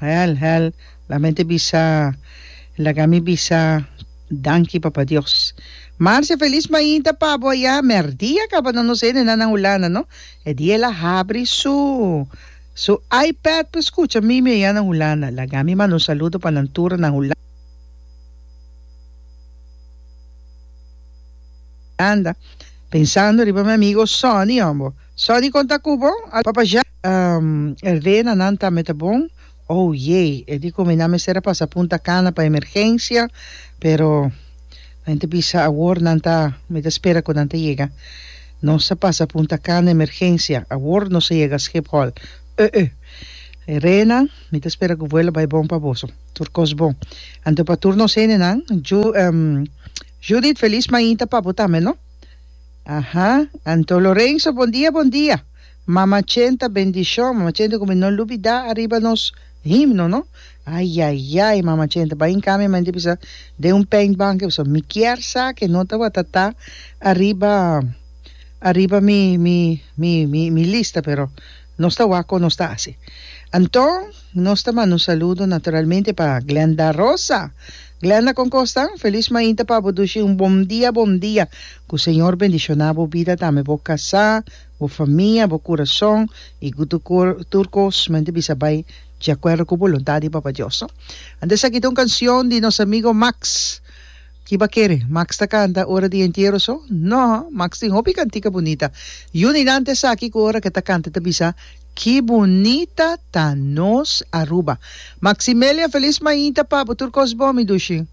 Hel hel la mente bisa e laga mi bisa danki papa Dios Marcia felis mainta pa bo ya merdi a kaba no nos hende nan na Hulanda no e dia el a habri su su iPad pa skucha mimi aya na Hulanda laga mi manda un saludo pa nan tur na Hulanda pensando riba mi amigo Sonny hombo. Sorry con ta cu bo a papa ja. Rdena nan tambe ta bon. Oh yey e di cu mi na mester a pasa punta cana pa emergencia pero nan ta bisa awor nan ta mi ta spera cu nan ta yega nos a pasa punta cana emergencia awor nos a yega schiphol öö Rena mi ta spera cu vuelo bay bon pa boso tur cos bon anto pa tur nos hende nan Ju Judith feliz mainta pa bo tambe no. Aha anto Lorenzo bon dia bon dia mama chenta bendishon mama chenta ku mi no lubida ariba nos himno no ayayay mama chenta bai in kami menti bisa den un paint banke bisa mi kier sa ke no tabata ta ariba ariba mi mi mi mi lista pero Nos ta wak kon nos ta hasi. Anto, nos ta manda un saludo naturalmente pa Glenda Rosa. Glenda, kon kos ta? Un felis mainta pa bo dushi un bon dia, bon dia. Ku Señor bendishoná bo bida tambe bo kasá, bo famia, bo kurason i ku tur kor, tur kos mainta bisa bai di akuerdo ku boluntat di Papa Dios, no? Anto esaki ta un kansion di nos amigo Max. Ki ba kere Max ta kanta ora di entiero so? No, Max tin hopi kantica bunita. Y unda hinante esaki cu ora ke ta kanta ta bisa, Ki bunita ta nos Aruba. Maximelia, Feliz mainta, pabo, tur cos bon mi dushi.